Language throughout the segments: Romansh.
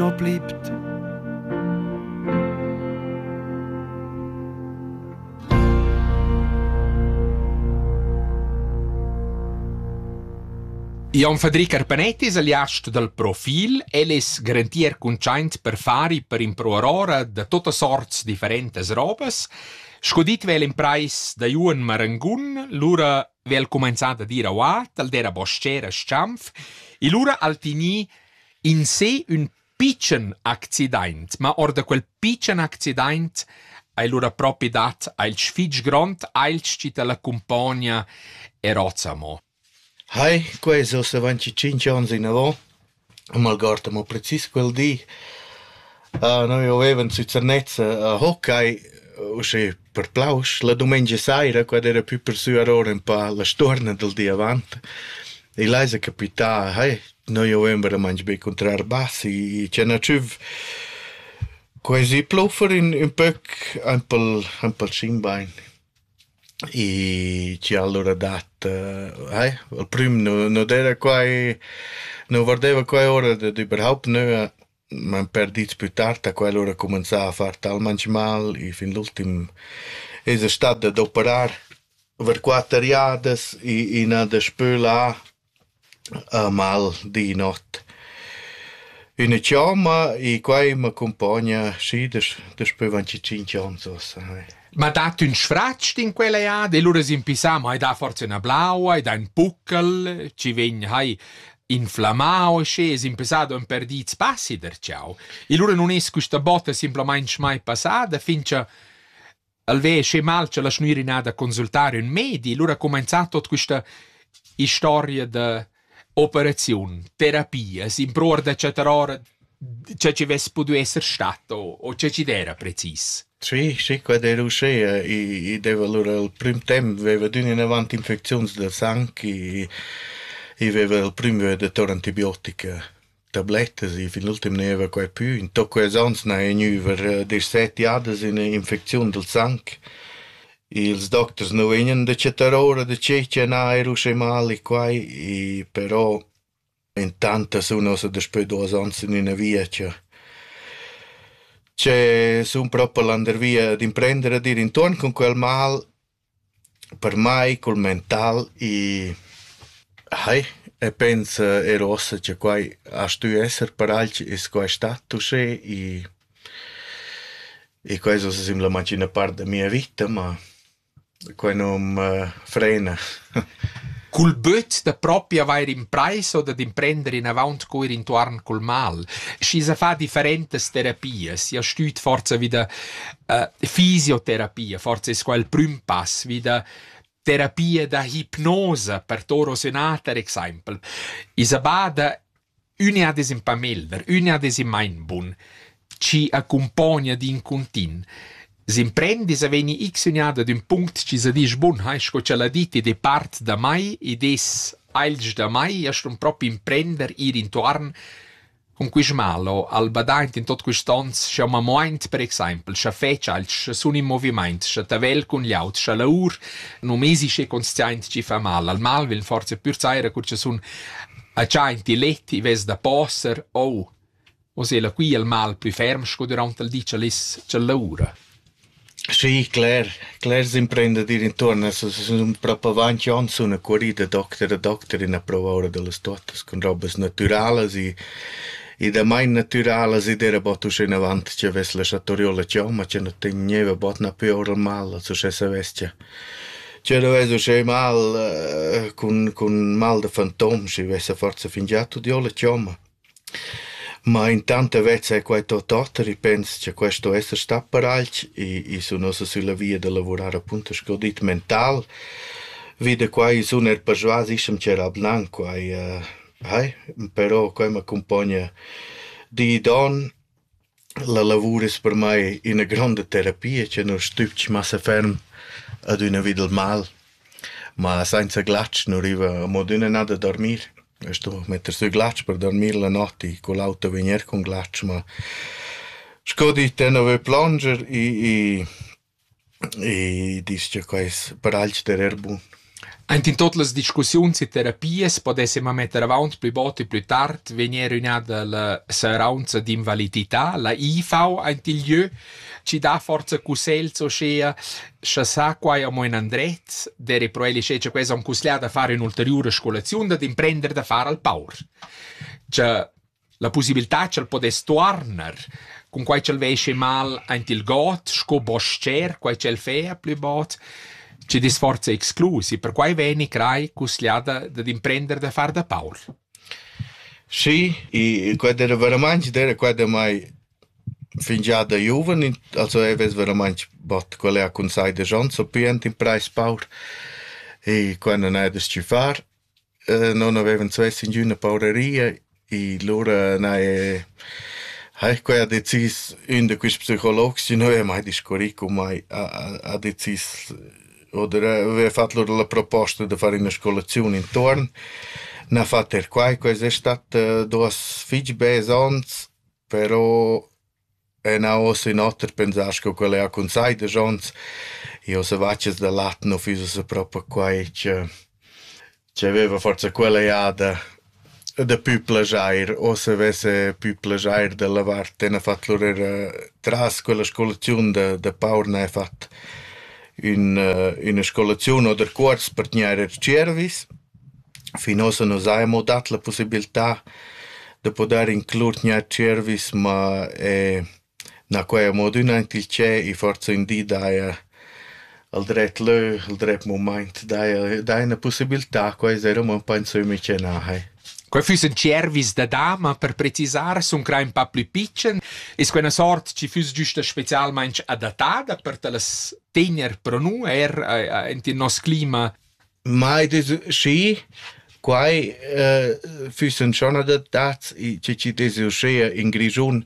non blibt. Jon Fadri Carpanetti es aliast dal Profil. El es garantier cuntschaint per far per impruar ora da totas sorts differentas robas. Sco dit vel imprais da Juan Marangun, lura vel cumanzà da dir auà, tal dera boscera Schanf, e lura al tini In sé ün pitschen accidaint, ma or da quel pitschen accidaint ais lura propi dat ailch fich grond, ailch chi t'la cumpogna e rozza mo. Hai, quai es uossa avanti tschinch ons inavò, m'algord amo precis quel di. Noi avevan sü Zernez a Hockey, usché Per Plausch la dumengia saira, quella era pü persuar ora ünpà la stuorna dal di avant, igl ais capità, hei, noi november a mangi be cuntrar bassi e tschena tschüf. Quai si pluffer ün ün pöc aint pel aint pel Schingbein. E ci allura dat hei, al prüm nu nu d'era quai, nu vardeva quai ora dad überhaupt nöa. M'han perdüts plü tard da quel, ho cumanzà a far talmaing mal. I fin l'ultim esa stat dad operar ver quatter jadas. I i n'ha daspö là mal di not üna chiomma. I quai m'accumpogna schi daspö daspö aunch tschinch ons uossa. Ma dat ün sfratsch in quella jada e lura s'impissà, mo hai dà forsa üna blaua, hai dà ün puccal, chi vegn hai inflammau e sche s'impissà do ün per di spassi derciau. E lura nun es quista botta simplamaing mai passada, fin cha alvè sche mal cha la schnürinà da consultare ün medi, lura ha cumanzà tot quista istoria da Operaziun, terapia, s'impruar da chattar ora cha chi vess pudü esser stat o o cha chi d'eira precis. Sì, sì, quai d'ei l'uschea. I i deva lura il prüm temp veva d'ün inavant infecziuns dal sang, i i veva il prüm vöd da tor antibiotica. tablettas. I fin l'ultim gneva quai pü. In toc quels ons n'haja gnüva deschset jadas üna infecziun dal sang. Ils docters nu vegnan da chattar ora da che cha na eir uschè mal e quai, però intant as sun ossa daspö duos ons in üna via cha che sun propi landervia d'imprender a dir intuorn cun quel mal Per mai cul mental i hai e pens er uossa cha quai a stü esser paragl es quai stat uschè i i quai es uossa simplamaing üna part da mia vita, ma quai nu'm frena. Cul böt da propi avair imprais o dad imprender inavaunt cur intuorn cul mal, schi s'ha fà differentas terapias, i ha stüt forsa vi da uh, fisioterapia, forse es qua il prüm pass vi da terapia da hipnosa per toro sonata per exaimpel. Isabada üna des in pamelder, üna des in mindbun, ci accompagna din contint s'imprendis a veni x unada d'un punct ci sa disch bun hai sco ce l'ha dit ed è part da mai ed es ailg da mai e stun propi imprender ir intuarn Cun quist malo ha'l badaint in tot quists ons sch'eu m'ha muaint per exaimpel scha fetscha alch sun in movimaint, scha tavel cun glieud, scha laur. Nu m'esi schi consciaint chi fa mal. Al mal vegn forsa pür saira cur cha sun agiaint il let, i vess da poser o. Hoz el quia il mal plü ferm sco dürant il di cha l'es cha laura. Schi, cler, clers imprendidir intuorn as es propo avanti ons üna currida docter a docter in a prouva oura da las tuottas cun robas natüralas e e damain natüralas ed eira bod uschè inavant cha avess laschà torir la chomma cha nu tegneva bod napü oura mal als uschè savess cha cha nu vess uschè mal cun cun mal da fantom schi vessa forsa fingià tudieu la chomma. Ma intant vezza quai tuot oter. I pens cha quai sto esser stat per alch e i sun uossa sülla via da lavurar apunto sco dit mental. Vi da quai sun eir persvas ischem ch'era bnan quai. Hai, però quai m'accumpogna di e don. La lavur es per mai üna gronda terapia cha nu stübg massa ferm ad üna vi dal mal, ma sainza glatsch nu riva amo adüna nà da dormir. A stu metter sü glatsch per dormir la not i cun l'auto vegner cun glatsch, ma sco dit, tenor plonger i E disch cha quai es per alch derer bun. Aint in tot las discussiuns e terapias podess ema metter avaunt plü bod e plü tard vegnir ün'ada la seraunza d'invalidità, la IV aint il jö, chi dà forza cussels uschea, scha sa quai amo ün andret, der e pro el isché cha quels han cussglià da far ün'ulteriura scolaziun, dad imprender da far al paur. Cha La pussibiltà ch'el podess tuorner, cunquai ch'el veschi mal aint il god sco bos-cher, quai ch'el fea plü bod, chi disforza exclus e perquai vegni crai cusgliada dad imprender da far da paur. Sì, e quella era veramente, era quella mai fingià da giuven, also e ves veramente bot qual è a consai de Jean, so pient in preis paur e quella non è da sci far. Non avevan svess ingüna pauraria e lura n'haja haja quai ha decis ün da quists psicologs chi nu haja mai discurrì cun mai ha ha decis oder aveva fat lur la proposta da far üna scolaziun intuorn n'ha fat er quai, quai es stat duos fich besands però Enavos ün oter pensar sco quel eir cun sai desch ons. Io se vaccias da lat nu füss ussa propi quai che ch'aveva forsa quella jada da pü plajair o se avesse pü plajair da lavar ten a fat lur eir tras quella scolaziun da da paur n'haja fat ün üna scolaziun o da cuors per tgnair er tschiervis. Fin ussa nu s'haja mo dat la pussibiltà da pudair inclur gnanc tschervis, ma na quai amo adüna aint il tschep e forsa ün di daja al dret lö, al dret mumaint daja daja üna pussibiltà, quai s'eira amo ün po in sömmi ch'eu n'ha hai. Quai füssen tschervis da dama per precisar, sun crai ün pa plü pitschen. Es quella sort chi füss güsta specialmaing adattada per ta las tegner pro nu eir aint in nos clima? Mai des schi. Quai uh, füssen schon adattats, i chi chi desi uschea in Grischun.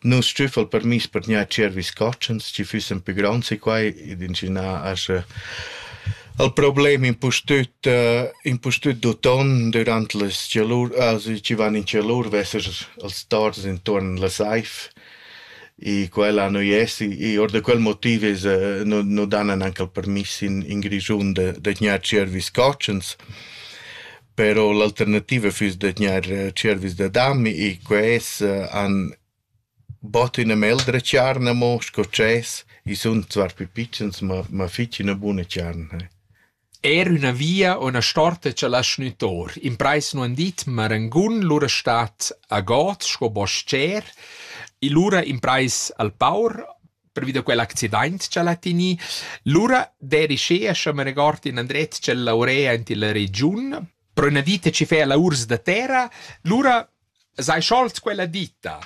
Nus stüffa'l permiss per gnir tschervis cotschens, chi füssen pü gronds e quai, ed inschinà ascha al problem impustüt uh, impustüt d'uton dürant las chalur, also chi van in chalur, vesser als tors intuorn la saiv. E quella nu es e or da quel motiv es nu nu dan anche il permiss in in Grischun da da tgnair tschiervis cotschens. Però l'alternativa füss da tgnair tschiervis da dam e que es han bot üna meldra tscharna mo sco dschess. I sun zwar pü pitschens ma ma fich üna buna tscharna. Er üna via o üna storta cha lascha gnü tor. Imprais nu han dit, ma rangun lura stat a god sco bos-cher. E lura imprais al paur pervi da quell'accidaint ch'el ha tegnì. Lura d'eri schea, scha me regord in andret ch'el laurea aint illa regiun, però üna vita chi fea laurs da terra, lura s'hai scholt quella ditta.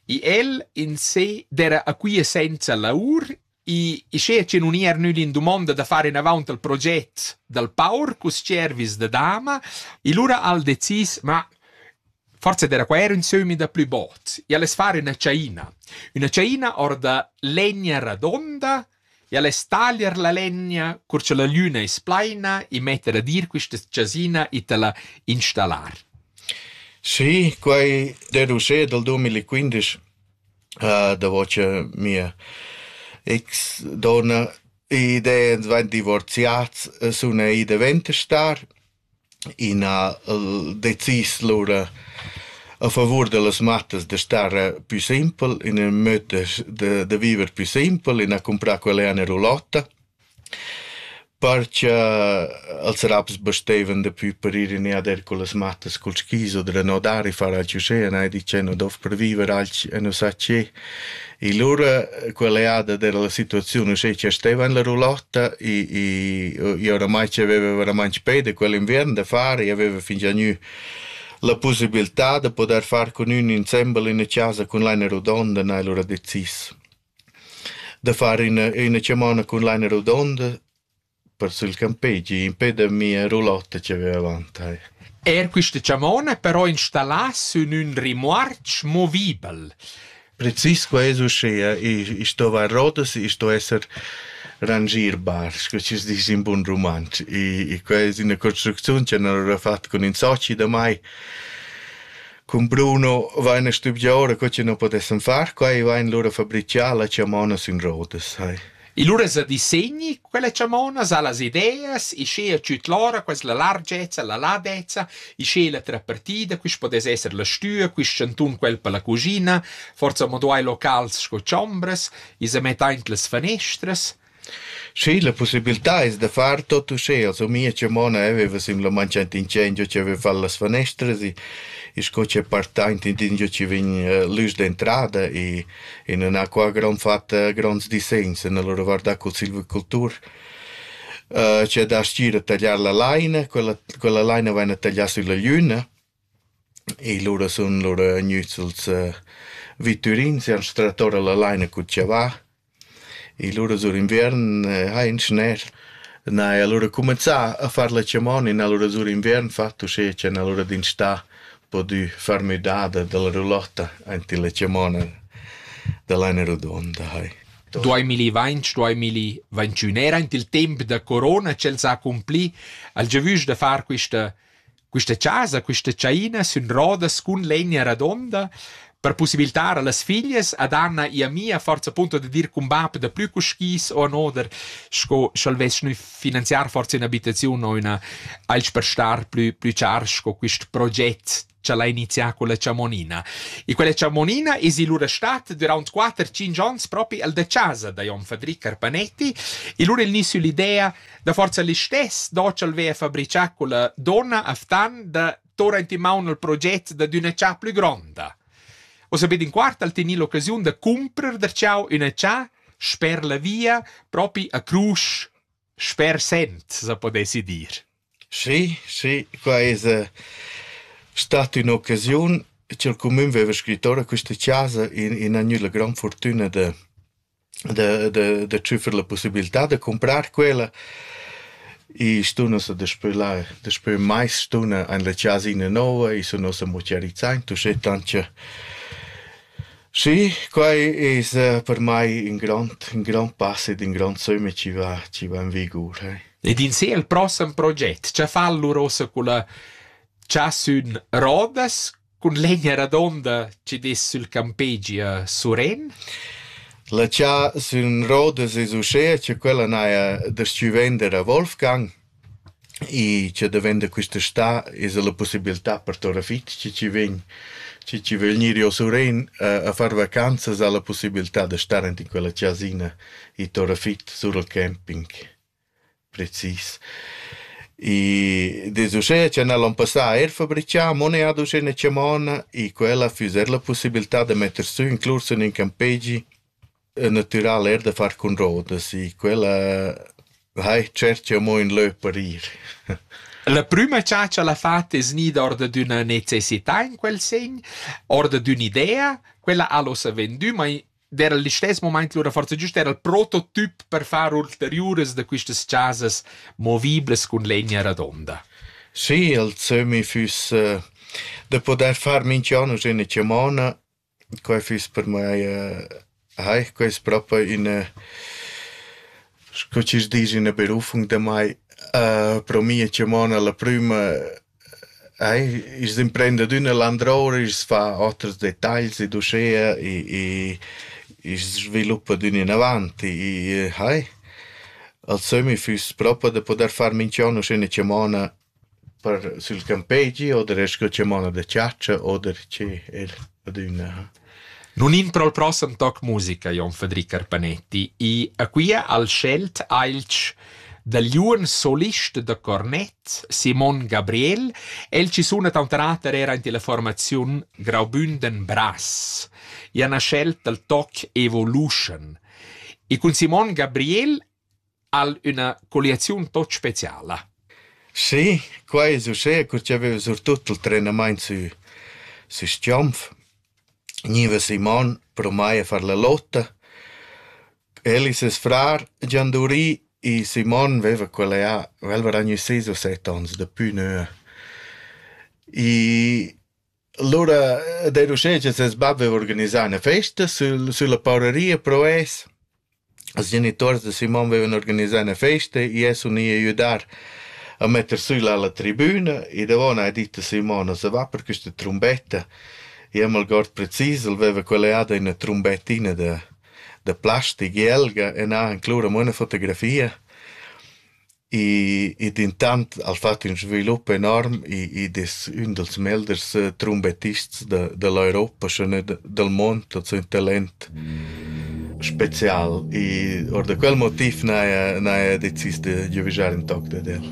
E el in se d'era a quia senza laur I schea che nun ir nüd in dumonda da far inavaunt al proget dal paur cus cervis da dama, e lura al decis, ma forse era qua era un sömi da plü bot, e al es far üna ciaina. Üna ciaina or da legna radonda, e al es taglier la legna cur cha la lüna es plaina e metter a dir quista chasina e ta la installar. Sì, quai deve usé dal 2015. davo cha mia ex donna ed ans vain divorziats suna i davent a star. I n'ha decis lura a favur da las mattas da stare pü simpel, in ün möd da da viver pü simpel, in ha cumprà quella ena rulotta Par cha als raps basteivan dapü per ir in e ad er cullas mattas cul skis oter a no dar e far alch uschè e n'hai dit che nu dovrà per viver alch e nu sa che. E lura quella jada d'era la situaziun uschè cha steva en la roulotta i i i oramai c'aveva veramaing peda quell'inviern da far, i aveva fingià gnü la pusibiltà da podair far cun ün insembel in chasa cun laina rodonda, n'hai lura decis. Da far üna üna chamonna cun laina rodonda per sül campegi impè da mia roulotta chi vaiva avant tai. Eir quista chamonna però installà sün ün rimorch movibel. Precis qua es uschea, i i stova a rodas, i sto esser rangierbar, scu chi's disch in bun rumantsch. I i qua es üna construcziun cha n'haurà fat cun ün soci damai. Cun Bruno vain stuvieu ora co chi nu podessan far quai e vain lura fabrichà la chamona sün rodas, hai. E lura sa disegni quella chamona, sa las ideas, e sche tschüt lora quas la largezza, la ladezza, e sche la trapartida, quist podess esser la stüa, quist chantun quel per la cugina, forza mo duai locals sco chombras, e sa mett aint las fanestras, Schi, la pussibiltà es da far tot uschea, so mia chamona veva simplamaing aint ingegno chi aveva fat las fanestras e e sco chi è partaint intingio chi vegn l'üs d'entrada e e nun ha qua grand fat gronds disegns nella lur guardà cul silvicultur chi a das gir a tagliar la laina, quella quella laina vaina taglià sülla gliüna E lura sun lura gnüts als vitturins e ans trat ora la laina cul chavà e lura sur inviern hain schner, na e alura cumenzà a far la chamona e na lura sur inviern fat uschè cha n'ha l'ura d'instà pudü far müdada da la roulotta aint illa chamona da laina rodonda hai. Duamilli vainch, duamilli ventünera aint il temp da corona ch'el s'ha accumpli, ha'l giavüsch da far quista Questa chasa, questa tschaina sün rodas cun legna radonda per possibiltar a las figlias ad Anna e a mia forza punto da dir cun bap da plü cu skis o an oder sco sch'el vess gnü finanziar forza ün'abitaziun o üna alch per star plü plü char sco quist proget cha l'ha inizià con la chamonina. E quella chamonina es lura stat duraunt 4-5 ons propi al da chasa da Jon Fadric Carpanetti e lura il gni süll'idea Da forza listess docel veva fabrichà quella donna aftan da torrent in maun al proget da d'üna cha plü gronda. O sapete in quart al tenir l'occasiun da cumprer der ciao üna cha sper la via propi a crusch sper sent se podessi dir. Sì, sì, qua es eh, stata ün'occasiun ch'el cumün veva scritto a questa chasa in, in agnüda gran fortüna da da da da tschüffer la pussibiltà da cumprar quella. I stun ussa daspö là daspö mais stun in la chasina nouva, i sun ussa mucchiarizzai, uschè tant cha Sì, quai es per mai ün grond ün grond pass ed ün grond sömmi chi va chi va in vigur. Ed in sé il prossem proget, cha fa allura ussa culla chasün Rodas, Cun l'eglia radonda chi dess sül campegi a Surén. La cha sün rodas es uschea cha quella n'haja da-stü vender a Wolfgang e cha da vender quist'està esa la pussibiltà per tora fich chi chi vegn chi chi vögl gnir io a Surén a far vacanzas ha la pussibiltà da star aint in quella chasina i tora fich sur al camping. Precis. I dess uschè cha n'hal on passà eir fabrichà mo neir uschè chamona e quella füss eir la pussibiltà da metter sü ün clor sün ün campegi natüral eir da far cun rodas e quella hai tschercho amo ün lö per ir. La prüma cha ch'el ha fat es gnida or dad üna necessità in quel segn, or dad ün'idea, quella al hossa vendü, ma d'era il stess moment lura forza giust era il prototip per far ulteriuras da questas chasas moviblas cun legna radonda. Sì, il Zömi füss äh, da poder far minchian üna chamona, quai füss per mai äh, Heich, quai ist proprio in, äh, sco ci dici, una berufung da mai. Uh, pro mia chamona la prima Eir i's imprendadüna landroura, i's fa oters detagls ed uschea e e i's sviluppa d'ün inavant e hai. Al sömmi füss propa da pudair far minchian uschè 'na chamona per sül campegi oder eir scu chamona da chatscha oder che eir adüna, ha. Nun in pro'l prossem toc musica, Jon Fadri Carpanetti, i a quia al schelt ailch dal giuven solist da cornet Simon Gabriel, el chi suna taunt rater eir aint illa formaziun graubünden Brass. I ha na schelt dal toc Evolution. E cun Simon Gabriel Ha'l üna colliaziun tot speciala. Sì, quai es uschè cur chi aveva surtut il trenamaint sü sü Schiomf. Gniva Simon pro mai a far la lotta. El e ses frar gian dovri e Simon veva quella jà, vel varà gnü sis o set ons, dapü nua. I Lura ed eir uschè cha ses bap vaiva organisà üna festa sül sülla paureria pro es. Ils genituors da Simon vaivan organisà üna festa, i es uni a güdar a metter sü la la tribüna e davo n'ha dit a Simon a se va per quista trumbetta. I am algord precis, el vaiva colliada üna trumbettina da da plastic jelga e n'ha inclura amo üna fotografia. E, e dentant ha fatg in svilup enorm e, ed es ün dals meglers eh, trumbettists da, da l'Europa, schon dal mond, also un talent spezial. E or da quel motiv n'haja, n'haja decis da giuvigiar in toc dad el.